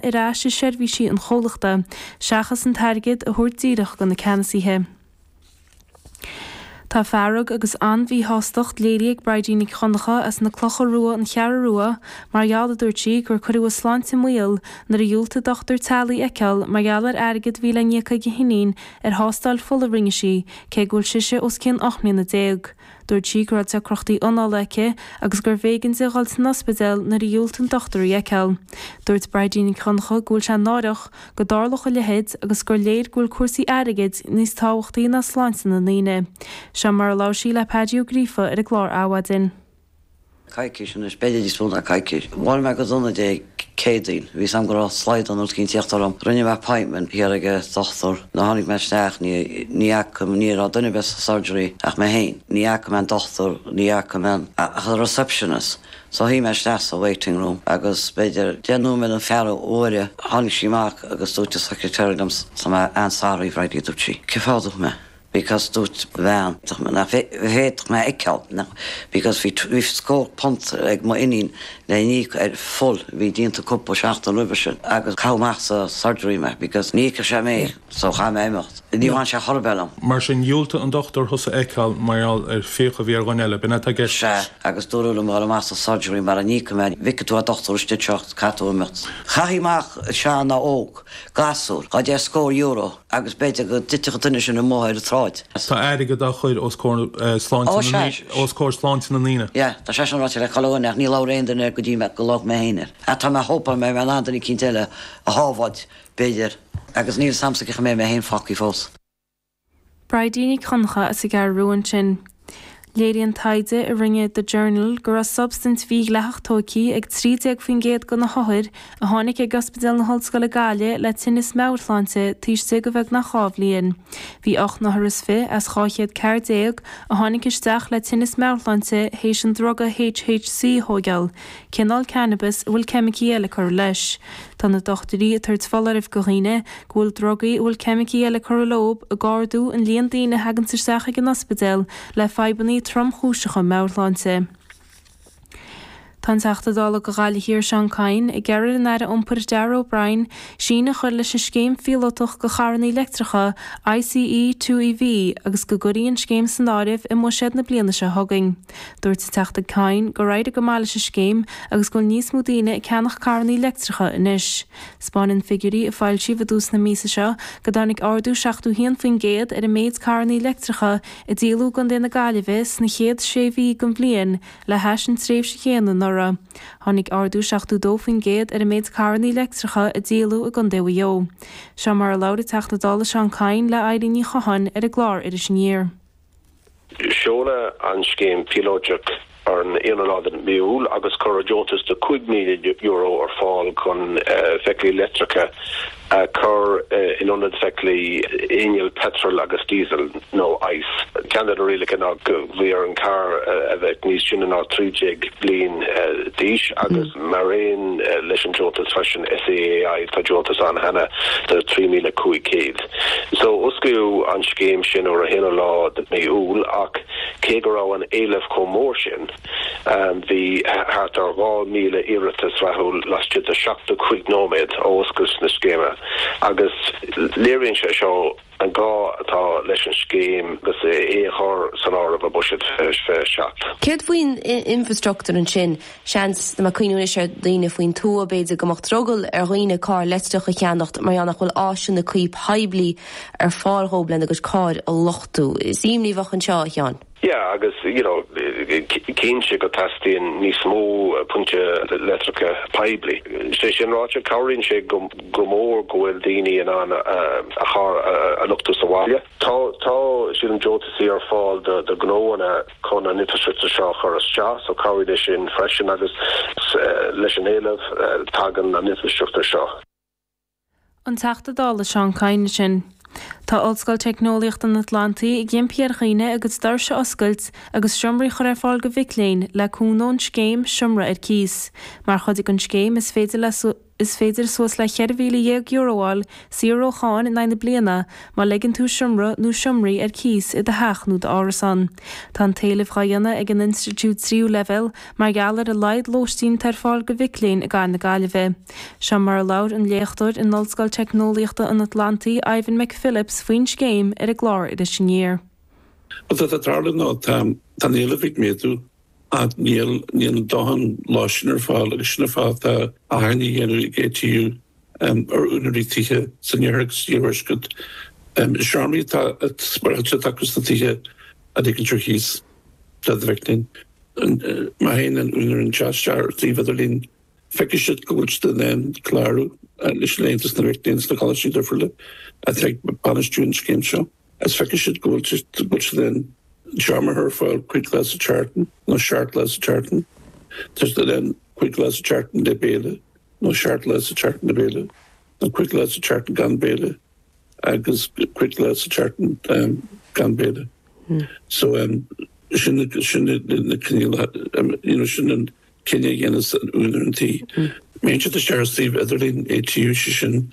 ar ais i seirbhísí an chomhlachta, seachas an t-airgead a thabhairt díreach do na ceannasaithe. Tá fearg agus an-mhíshástacht léirithe ag Bridie Nic Dhonncha as na Clocha Rua, An Cheathrú Rua, mar gheall, a dúirt sí, gur cuireadh a sláinte i mbaol nuair a dhiúltaigh dochtúir teaghlaigh í a fheiceáil mar gheall ar airgead a bhí le n-íoc ag a hiníon ar thástáil fola a rinne sí, cé go bhfuil sise os cionn ocht mbliana déag. Dúirt sí go raibh deacrachtaí anála aici agus gurbh éigean di dhul san ospidéal nuair a dhiúltaigh an dochtúir í a fheiceáil. Dúirt Bridie Nic Dhonncha go bhfuil sé náireach go dtarlódh a leithéid agus gur léir go bhfuil cúrsaí airgid níos tábhachtaí ná sláinte na ndaoine. Seo mar a labhair sí le Paddy Ó Gríofa ar an gclár Adhmhaidin. coicís anois, b'fhéidir níos mó ná coicís. Bhuail mé go dona Dé Céadaoin. Bhí 's agam go raibh slaghdán eicínt ag tíocht orm. Rinne mé appointment thiar ag an dochtúir. Nuair a tháinig mé isteach ní, ní fhaca, ní raibh duine ar bith sa surgery ach mé féin. Ní fhaca mé an dochtúir, ní fhaca mé an, ach an receptionist. So shuigh mé isteach sa waiting room agus b'fhéidir deich nóiméad nó ceathrú uaire tháinig sí amach agus dúirt an secretary liom, so mé, I'm sorry Bridie, dúirt sí, cén fáth a dúirt mé. because dúirt an bhean nach bhféadfadh mé a fheiceáil because bhí scór punt ag m'iníon le n-íoc ar fuil a bhí déanta cúpla seachtain roimhe sin agus caitheadh amach as an surgery mé because ní fheiceadh sé mé so chaith mé imeacht. Ní bhain sé chor ar bith liom. Mar sin, dhiúltaigh an dochtúir thusa a fheiceáil mar gheall ar fhiacha a bhí ar dhuine eile, b'in atá i gceist? Sea, agus dúradh liom a dhul amach as an surgery mara n-íocfadh mé, ní fheicfidh tú an dochtúir istigh seo, caithfidh tú imeacht. Chaithfeadh amach sean, óg, gasúr, dhá deich scór euro. agus b'fhéidir go dtitfeadh an duine sin amuigh ar an tsráid. Tá airgead á chur os comhair sláinte na ndaoine. Sea, tá sé sin ráite le cúpla bliain ach ní labhair aon duine air go dtí go labhair mé féin air. Ach tá mé hopeful go mbeidh mé in ann duine eicínt eile a shábháilt, b'fhéidir, agus níl 's agamsa cá mbeidh mé féin fágtha fós. Bridie Nic Dhonncha as an gCeathrú Rua ansin. Léiríonn taighde a rinne The Journal go raibh substaint mhídhleathach tóigthe ag 13% de na hothair a tháinig chuig Ospidéal na hOllscoile Gaillimh le tinneas meabhairshláinte taobh istigh de bheagnach dhá bhliain. Bhí ocht n-othar is fiche as 214 a tháinig isteach le tinneas meabhairshláinte théis an druga HHC a thóigeáil. cineál cannabais a bhfuil ceimicí eile curtha leis. Tá na dochtúirí ag tabhairt foláirimh go dhaoine go bhfuil drugaí a bhfuil ceimicí eile curtha leob ag ardú an líon daoine a thaganns isteach ag an ospidéal le fadhbanna tromchúiseacha meabhairshláinte. Tá an Teachta Dála do Ghaillimh Thiar Seán Kyne ag iarraidh ar an Aire Iompair Darragh O'Brien síneadh a chur leis an scéim phíolótach do charrannaí leictreacha ICE2EV agus go gcuirfí an scéim san áireamh i mbuiséad na bliana seo chugainn. Dúirt an Teachta Kyne gur éirigh go maith leis an scéim agus go bhfuil níos mó daoine ag ceannach carrannaí leictreacha anois. 'Spáineann figiúirí a foilsíodh i dtús na míosa seo go dtáinig ardú 71% ar an méid carrannaí leictreacha a díoladh i gContae na Gaillimhe sna chéad sé mhí den bhliain le hais an tréimhse chéanna anuraidh. Tháinig ardú 72% ar an méid carrannaí leictreacha a díoladh i gContae Mhaigh Eo. Seo mar a labhair an Teachta Dála Seán Kyne le Eileen Ní Chatháin ar an gclár Iris Aniar. Seoladh an scéim phíolóiteach ar an aonú lá de mhí Iúil agus cuireadh deontas de €5,000 ar fáil chun feithiclí leictreacha a chur in ionad feithiclí innill peitril agus díosail nó ICE. Ceann de na rialacha ná go bhí ar an gcarr a bheith níos sine ná 13 bliain d'aois agus mar aon leis an deontas freisin SEAI tá deontas ann cheana de €3,500. So, osclaíodh an scéim sin ar an aonú lá de mhí Iúil ach cé go raibh an éileamh chomh mór sin, bhí thart ar 2,000 iarratas rathúil laistigh de 75 nóiméad ó oscailt na scéime agus léiríonn sé seo an gá atá leis an scéim agus é a chur san áireamh i mBuiséad 27. Céard faoin infreastruchtúr ansin? Seans ag cuimhniú anois ar dhaoine faoin tuath, b'fhéidir, go mbeadh drogall ar dhaoine carr leictreach a cheannacht mar gheall nach bhfuil áiseanna cuí poiblí ar fáil dhóibh lena gcuid cairr a luchtú. Is imní a bheadh anseo, a Sheáin. Yeah agus you know cinnte go teastaíonn níos mó pointe leictreacha poiblí. Sé sin ráite, cabhraíonn sé go mór go bhfuil daoine in ann a charr a luchtú sa bhaile. Tá sílim deontasaí ar fáil do ghnóanna. chun an infrastruchtúr seo a chur isteach, so cabhróidh sé sin freisin agus leis an éileamh tagann an infrastruchtúr seo. An Teachta Dála Seán Kyne ansin. Tá Ollscoil Teicneolaíochta an Atlantaigh ag impí ar dhaoine a gcuid doirse a oscailt agus seomraí chur ar fáil go mhic léinn le cúnamh ón scéim 'Seomra ar Cíos'. Mar chuid den scéim is féidir le. Is féidir suas le €14,000 a fháil saor ó cháin in aghaidh na bliana má leigeann tú seomra nó seomraí ar cíos i do theach nó d'árasán. Tá an t-éileamh dhá dhéanamh ag an institiúid tríú leibhéal mar gheall ar a laghad lóistín atá ar fáil go mhic léinn i gCathair na Gaillimhe. Seo mar a labhair an léachtóir in Ollscoil Teicneolaíochta an Atlantaigh Ivan McPhillips faoin scéim ar an gclár Iris Aniar. Bhuel, tá sé ag tarlú nó tá an éileamh ag méadú. Ach níl a ndóthain lóistín ar fáil agus sin an fáth atá achainí á dhéanamh ag ATU ar úinéirí tithe san iarthar agus san iarthuaisceart. Is seomraí atá spárálta acu sna tithe a ligean ar cíos do na mic léinn. Má théann aon úinéir anseo isteach ar shuíomh idirlín feicfidh siad go bhfuil siad in ann clárú leis an Aontas na Mhic Léinn sna coláistí difriúla atá ag bainistiú an scéim seo. Is feiceann siad go bhfuil siad in ann teacht ar fáil cúig lá sa tseachtain nó seacht lá sa tseachtain. Tá siad in ann cúig lá sa tseachtain le béile nó seacht lá sa tseachtain le béile nó cúig lá sa tseachtain gan béile agus cúig lá sa tseachtain gan béile. So, sin na coinníollacha, you know, sin an cinneadh a dhéanas úinéir an tí. Má théann siad isteach ar suíomh idirlín ATU, sé sin,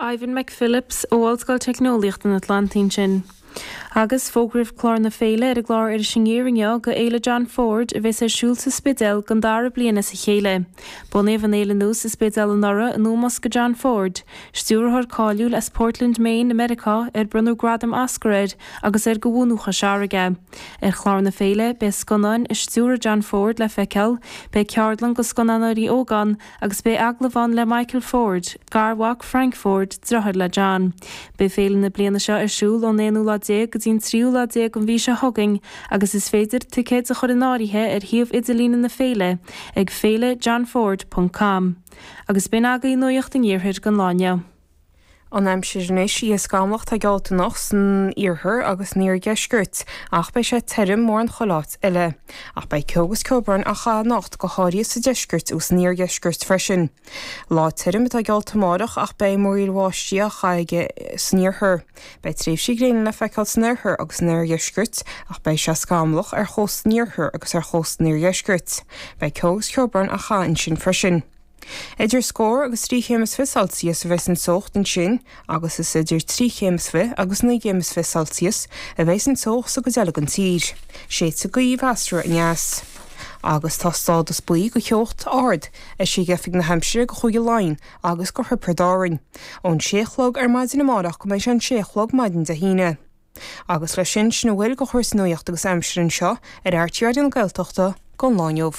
Ivan McPhillips ó Ollscoil Teicneolaíocht an Atlantaigh ansin. Agus fógraíodh clár na féile ar an gclár Iris Aniar inniu go Fhéile John Ford a bheas ar siúl sa Spidéal don dara bliain as a chéile. Bunaíodh an fhéile nua sa Spidéal anuraidh in ómós go John Ford, stiúrthóir cáiliúil as Portland Maine i Meiriceá ar bronnadh gradam Oscar air agus ar go bhunadh Chois Fharraige é. Ar chlár na féile beidh scannáin a stiúir John Ford le feiceáil, beidh ceardlann go scannánóirí óga ann, agus beidh agallamh ann le Michael Ford, garmhac Frank Ford, driotháir le John. Beidh féile na bliana seo ar siúl ón aonú lá déag go dtí'n tríú lá déag an mhí seo chugainn agus is féidir ticéid a chur in áirithe ar shuíomh idirlíne na féile ag feilejohnford.com. Agus b'in agaibh nuaíocht an Iarthair don lá inniu. An aimsir anois oíche scamlach atá geallta anocht san iarthar agus san iardheisceart, ach beidh sé tirim mórán chuile áit eile. Ach beidh ceo agus ceobhrán á chaith anocht, go háirithe sa deisceart agus san oirdheisceart freisin. Lá tirim atá geallta amárach ach beidh múraíl bháistí á chaith aige san iarthar. Beidh tréimhsí gréine le feiceáil san oirthear agus san oirdheisceart, ach beidh sé scamlach ar chósta an iarthair agus ar chósta an iardheiscirt. Beidh ceo agus ceobhrán á chaith ansin freisin. Idir scór agus trí chéim is fiche Celsius a bheidh an teocht ansin agus is idir trí chéim is fiche agus naoi gcéim is fiche Celsius a bheidh an teocht sa gcuid eile den tír. Séidfidh gaoth mheasartha aneas agus tá stádas buí go teocht ard eisithe ag Oifig na hAimsire go Chúige Laighean agus go Thiobraid Árainn ón sé a chlog ar maidin amárach go mbeidh sé an sé a chlog maidin Dé hAoine. Agus leis sin, sin a bhfuil de chur sa nuaíocht agus aimsir anseo ar RTÉ Raidió na Gaeltachta don lá inniu.